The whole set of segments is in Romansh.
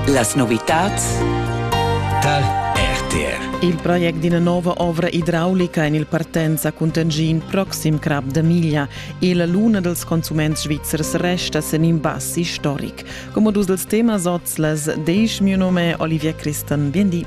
Las novitads tar RTR. Il project d'ina nova ovra idraulica en il partenza cun Tangin proxim Crap da Miglia e la luna dels consuments svizzers resta sen in bass historic. Come dus dels temas oz las deis mio nome Olivier Christen. Bien di.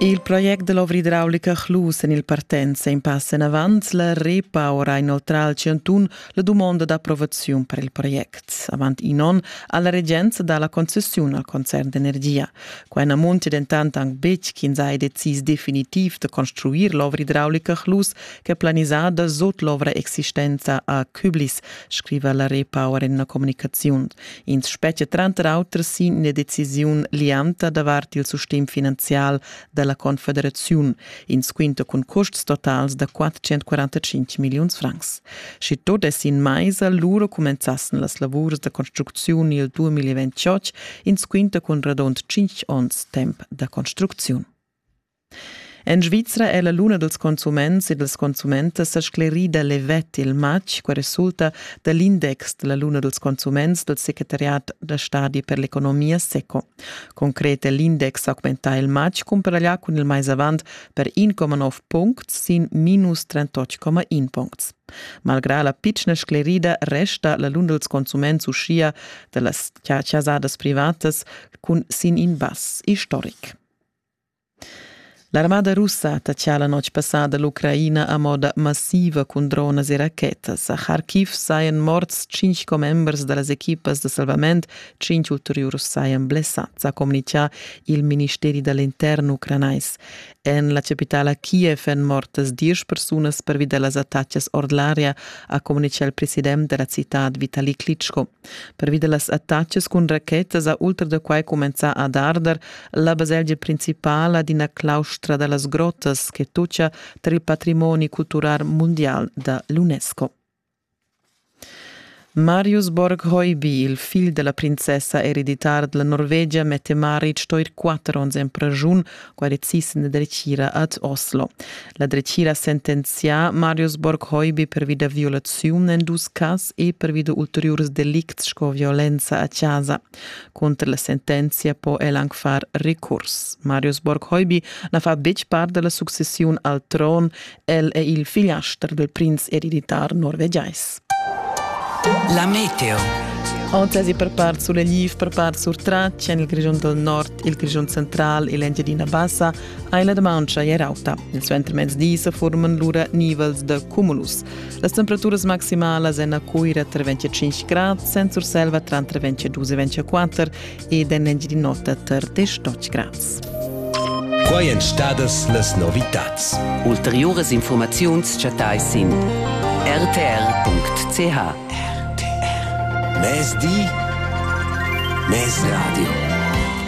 Il project da l'ovra idraulica Chlus en il Partenza in pass enavant la repower ha inoltrà al Chantun la dumonda d'approvaziun per il project. Avant in onn ha la regenza dà la concessiun al concern d'energia. Quai na muntia dentant anc betg ch'ins ha decis definitiv da construir l'ovra idraulica Chlus ch'è planisada sut l'ovra existenza a Küblis, scriva la repower en una comunicaziun. Ins spetga tranter auter sin ina decisiun lianta davart il sustegn finanzial dalla Confederaziun. Ins quinta cun custs totals da 445 milliuns francs. Sche tot es in maisa, lura comenzassen las lavurs da construcziun il 2028, ins quinta cun radund 5 onns temp da construcziun. En Svizra è la luna dals consuments e dals consumentas sa sclerida levet il matg, qua resulta da l'index da la luna dals consuments dal secretariat da stadi per l'economia SECO. Concret è l'index augmentà il matg cumparaglià cun il mais avant per 1,9 puncts sin minus 38,1 puncts. Malgrà la pitschna sclerida resta la luna dals consuments uschia da las chasadas privatas cun sin in bass istoric. L'armada russa ha tatschà la notg passada l'Ucraina a moda massiva cun dronas e rachetas. A Kharkiv sajan morts tschintg commembers da las equipas da salvament, tschintg ulteriurs sajan blessads, ha communitgà il ministeri da l'intern ucranais. En la chapitala Kiev èn mortas diesch persunas pervi da las attacas ord l'aria, ha communitgà il president da la citad Vitali Klitschko. Pervi da las attacas cun rachetas ha ultra da quai cumenzà ad arder la baselgia principala d'ina claustra da las grottas che tutgia tar il patrimoni cultural mundial da l'UNESCO. Marius Borg-Hoiby, il figl della princessa ereditar della Norvegia, mette Maric sto ir quatter onns en pragiun quale existe una dretgira ad Oslo. La dretgira ha sentenzià Marius Borghoibi pervida violazione en dus cas e pervida ulteriores delicts sco violenza a casa. Contro la sentenza può el anche far recurs. Marius Borghoibi na fa betg parte della successione al tron El è il figliaster del prinz ereditar norvegiais. La meteo. Antesi per part sur Lviv, per part sur Traccia, il Grigion del Nord, il Grigion Central e l'Engiadina Bassa hai la demancha e rauta. Il suenter mezdi se forman lura nivels de cumulus. Las temperaturas maximalas en a Cuira tra 25 grad, Sent Surselva tra 22 e 24 ed en Engiadin'Ota tar te stoch graz. Quai èn stadas las novitads. Ulteriuras informaziuns chattai sin rtr.ch. RTR. Mezdi, mezradio.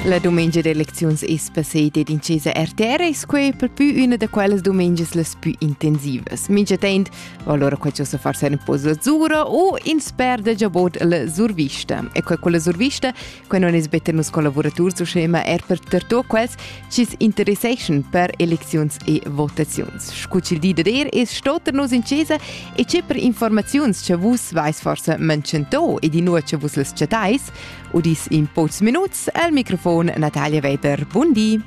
La dumengia d'elecziuns es passeda ed incesa RTR es quai per pü üna da quellas dumengias las pü intensivas. Minchatant Allora quei ci sa far sen po zura o in sper de giabot la survista. E quei con la survista, quei non es bete nus collaboraturs u schema er per terto quels ci interesseschan per elecziuns e votaziuns. Scuci il di de der es stoter nus in cesa e c'è per informaziuns che vus vais forse mancento e di nur che vus les chatais, udis in pocs minuts al microfon Natalia Weber. Buondì.